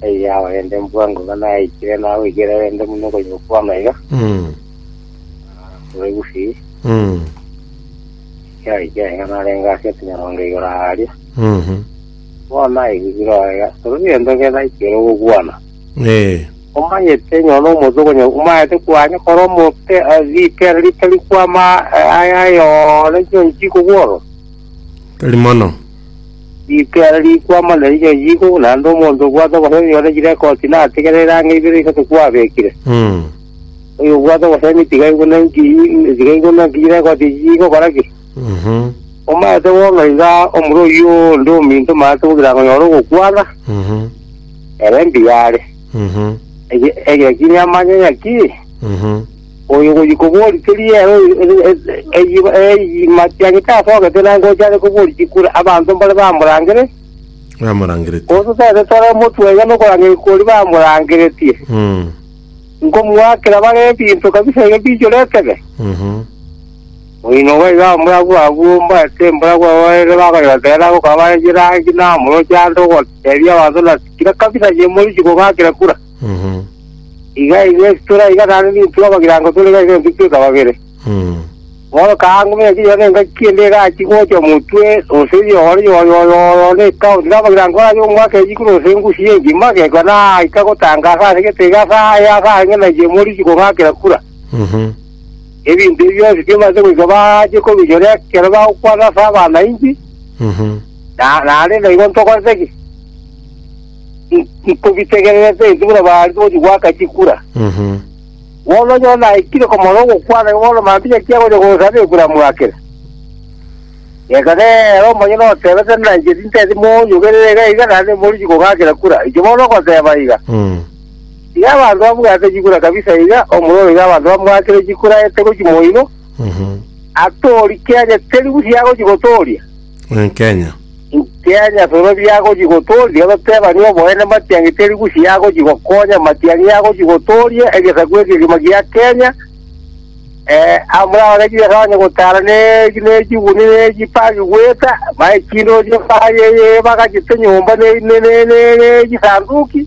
Taiyo abaende mbwa ngoba naikire nagoikire rende muno okonya okwama iga Mm. kore gusi Mm. kiaike iga narenge ase etinyarongo igoro aria Mhm. bono aigigiro iga kore gento kere naikire ogokwana Eh. omanyete nyono omonto okonya omanyete kwanya kore omote eh, ripera ritari kwama eh, aya yore chionsi koboro Tari mono. Riikera rikwama na rinya riiku, naende omonto obwate obosemi nyore chire ekoti natigere erangi ibere isato kwabekire. Mm. Oyo obwate obosemi tiga aigwe naki tiga aigwe naki chire ekoti echi chigokora ki? Mhm. Omanyete bo ng'a iga omura oyio onde ominto omanyete bo kirango nyore ogokwana, Mhm. ere mbiyare. Mhm. Ege- Egekini amanye ng'aki? Mhm. Oyo ogochia koboria teri ere eyima chiagete ase ogete na ngocha are koboria chikure abanto mbare bamorangere, Bamorangeretie. gose tore tore motwe iga nokorangeria kori bamorangeretie. Mm. Nkomoakera bare ebinto kabisa iga bichore etebe. Mhm. Oino iga iga omorabwo abwo mbarete mborabwo abaere bakareba tera gokaba bare chirangi na amoroche ande ogotebia abanto na kira kabisa chimori chikogakera kura. Mhm. Iga iga ase tore iga naende nintue amagirango tore iga iga engaki ekabagere. Mhm. Bono kaango buna chinyora na engaki ende egachi gocha omotwe ose yoore yoore yoore yoore na etaoni na amagirango arabe omwaka echi kore ose engusu ye engima agekwa naika gotangaasa ase egete iga ase aye ase aye ng'a nainche moriki kong'akera kura. Mhm. Ebinto ebi bionsi bimaete goika bache kobinyora ekero bagokwana ase abanainchi Mhm. na naende naigo ntokorete ki? i- ikobitegererete ase buna baarenge gochia goaka chikura. Mhm. Bono nyora naikire komorora ogokwana igo bono mambia naki agocha gosaba ekura mwakere. Reka nere omonye notebete na inche tinteti monyogerere iga iga naende morichi kogakera kura. Inche bono ogoteba iga. Mm. Iga abanto babwate chikura kabisa iga omororo iga abanto bamwakire chikura ete gochia moino Mhm. atori kiagete ribusi agochia gotoria. Nkenya. Nkenya toro biagochi gotoria, ototebani oboene matiangi teri gusi yagochi gokonya matiangi yagochi gotoria egesaku eke kegima gia Kenya. Eh, amurao ne chibesa onye gotara ne ne chiguni ne chipagi gweta, bae chindorio baye ye bagachete nyomba ne ne ne ne ne chisanduki.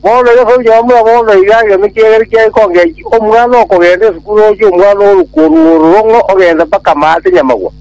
Bono iga sonyioma muna bono iga egento kiagere kiaye kongechi omwana okogenda esukuru ochi omwana oruko oruoro rong'o ogenda mpaka maate nyamagwa.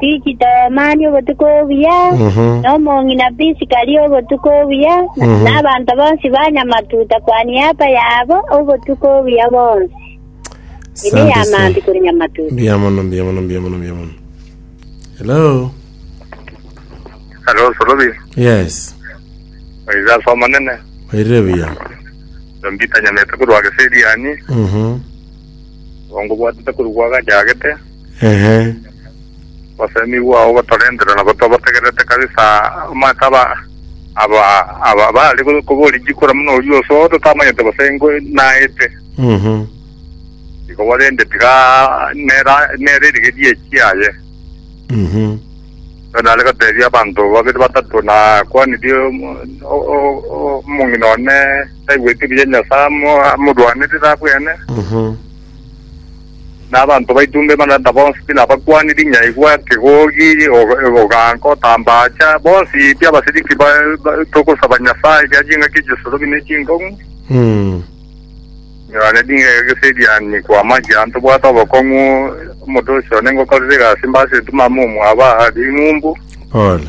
Tikito mani obotuko obuya, na omong'ina Prisika aria obotuko obuya, na abanto bonsi ba nyamatuta kwa niaba yabo obotuko obuya bonsi. Ime Asante ya sana. maambi kore nyamatuta. Mbuya mono, mbuya mono, mbuya mono, mbuya mono. Hello. Hello, Solobi. Yes. Oiza soma nene. Oirire buya. Ndombita nyamete korwa geseriani. Mhm. Ongo bwatete korwa gwa gachagete. Ehe. Gose nigo ao gotorentera na gotobategererete kabisa omanyete aba aba aba bare koboria chikura muna oria osoa totamanyete gose ngo naete. Mhm. Igo bo rende tiga nera nere rigeria echiaye. Mhm. Bono nare gotebia abanto babere batato na kwanirie omo- o- o- o- omong'ina one taigweti buya Nyasae amo- amorwanerere abwene. Mhm. na abanto baito onde bana na bonsi tinabakwani rinyaigwa, kegogi, oganka, otambacha, bonsi pi abasiriki ba togosaba Nyasae ria chingaki chesorobi ne chinkong'u, nyore ring'eke gese erianyi kwama gia ntobwate obokong'u, omotosi one ngokorera egasi mbase etuma amo omwabo aa ring'umbu. Pole.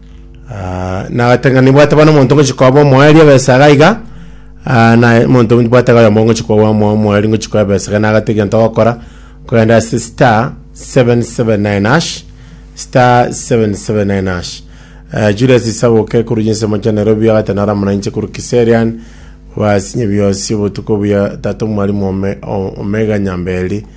Ah, nagateng'ana nibwate bono omonto ngochi koba omoeri ebesa iga iga ah, na omonto nibwate iga oyomo ngochi koba omo- omoeri ngochi koba ebesa iga nagata egento ogokora kogenda ase star 779 hash star 779 hash Eh, Julius Isaboke korwa chinsemo chia Nairobi agate naro amo nainche korwa Kiserian basinye biosi obotuko buya tata omwalimu ome, o- omega nyamberi